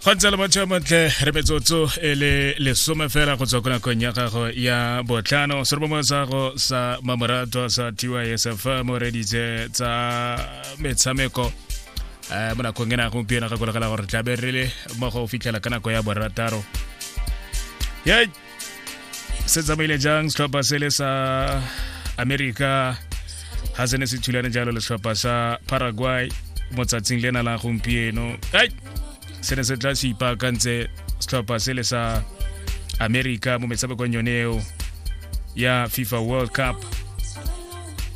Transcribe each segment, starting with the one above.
go ntse le motho montle re metsotso e le lesome fela go tswa ko nakong ya gago ya botlhano serobomo sa go sa mamoratwa sa tysf mo reditse tsa metshameko um mo nakong ena gompieno ga kolegela gore tlabe re le mo go fitlhela ka nako ya borataro se tsamaile jang setlhopha se le sa america ga se ne se thulane jalo le setlhopha sa paraguay mo tsatsing le na la gompieno ai se ne se tla se ipaakantse setlhopha se le sa america mo metshamekong yone eo ya fifa world cup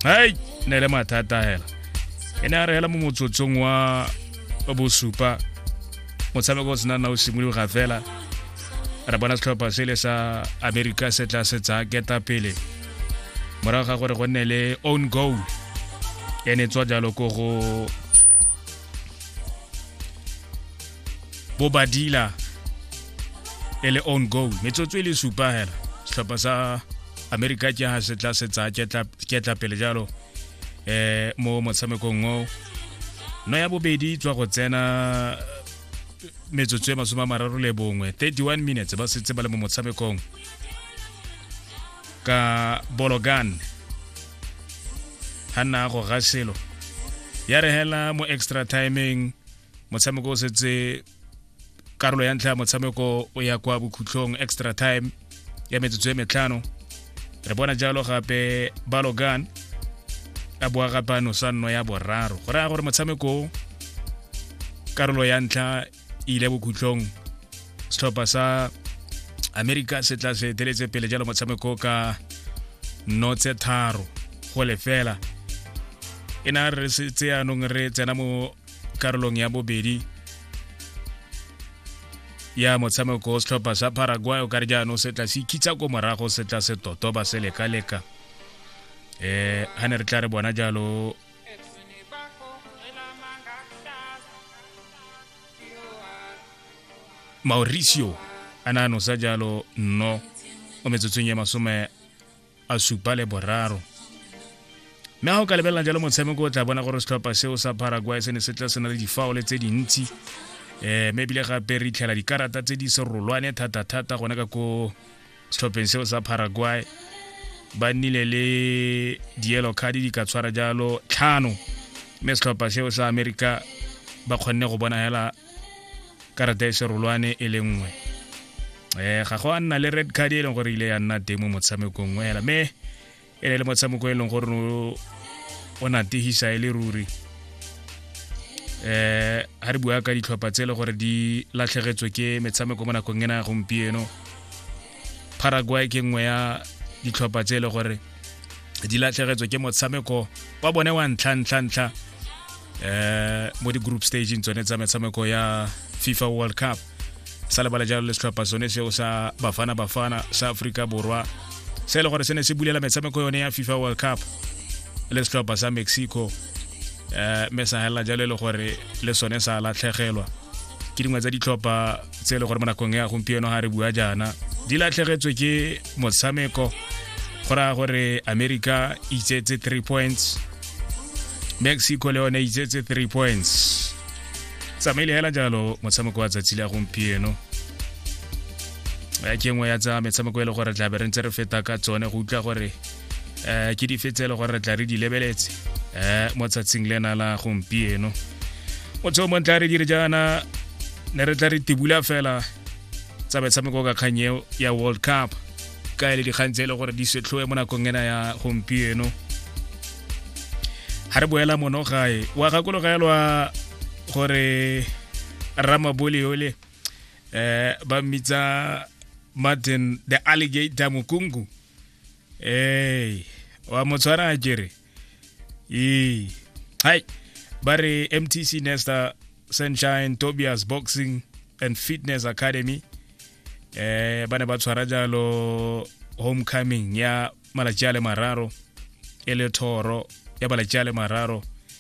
ai ne le mathata hela e ne a re hela mo motsotsong wa bosupa motshameko o sena na o simologa fela re bona setlhopha se le sa amerika se tla se tsaya keta pele morago ga gore go nne le own goal e ne tswa jalo ko go bobadila e le own goal metsotso e le supa hela setlhopha sa amerika ke ha se tla se tsaya ketla pele jalo um mo motshamekong o no ya bobedi tswa go tsena metsotso e masome a mararo le bongwe 31 minutes ba setse ba le mo motshamekong ka bologan ga nna go ga selo ya re hela mo extra timing motshameko o setse karolo ya ntlha ya motshameko o ya kwa bokhutlhong extra time ya metsotso e metlhano re bona jalo gape balogan a boa gape a nosa nno ya boraro go raya gore motshameko karolo ya ntlha e ile bokhutlong setlhopha sa america se tla se eteletse pele jalo motshameko ka nno tse tharo go lefela e na re setse anong re tsena mo karolong ya bobedi ya motshameko o setlhopha sa paraguay o kare jaanong setla se ikitsha ko morago setla se toto ba se leka-leka um eh, ga ne re tla re bona jalo mauricio a ne a nosa jalo no mo metsotsong ya masome a supa le boraro mme ga o ka lebelela jalo motshameko o tla bona gore setlhopha seo sa paraguay se ne se tla se na le difaole tse dintsi um mme ebile gape re itlhela dikarata tse di serolwane thata-thata gone ka ko setlhopheng seo sa paraguay ba nnile le dielo card di ka tshwara jalo tlhano mme setlhopha seo sa america ba kgonne go bona hela karata e serolwane e le nngwe um ga go a nna le red card e leng gore ile ya nna teng mo motshamekong hela mme e ne le motshameko e leng gore o nategisa e le ruri um ga re bua ka ditlhopha tse e le gore di latlhegetswe ke metshameko mo nakong ena ya gompieno paraguay ke nngwe ya ditlhopha tse e le gore di latlhegetswe ke motshameko wa bone wa ntlha-ntlha-ntlha um eh, mo di-group stageng tsone tsa metshameko ya fifa world cup sa lebala jalo le setlhopha sone seo sa bafana bafana sa aforika borwa se e le gore se ne se bulela metshameko yone ya fifa world cup le setlhopha sa mexico um mme sa helela jalo e le gore le sone sa latlhegelwa ke dingwe tsa ditlhopha tse e le gore mo nakong ya gompieno ga re bua jaana di latlhegetswe ke motshameko go raya gore america e itsetse three points mexico le yone e itsetse three points tsamaile hela jalo motshameko wa tsatsi le ya gompieno ya ke nngwe ya tsa metshameko e le gore tlabe re ntse re feta ka tsone go utlwa gore um ke dife tse e le gore re tla re di lebeletse um mo tsatshing le na la gompieno motho mo ntla re dire jaana ne re tla re tibula fela tsa metshameko ka kgang eo ya world cup ka e le dikgang tse e le gore di setlhoe mo nakong ena ya gompieno ga re boela mono gae wa gakologelwa gore ramabole ole um ba mmitsa martin the alligator mokungu ee wa mo tshwara a kere ee hai ba re mtc nesta sunshine tobias boxing and fitness academy eh ba ne ba tshwara jalo homecoming ya malatsi a le mararo e le thoro ya malatsi a le mararo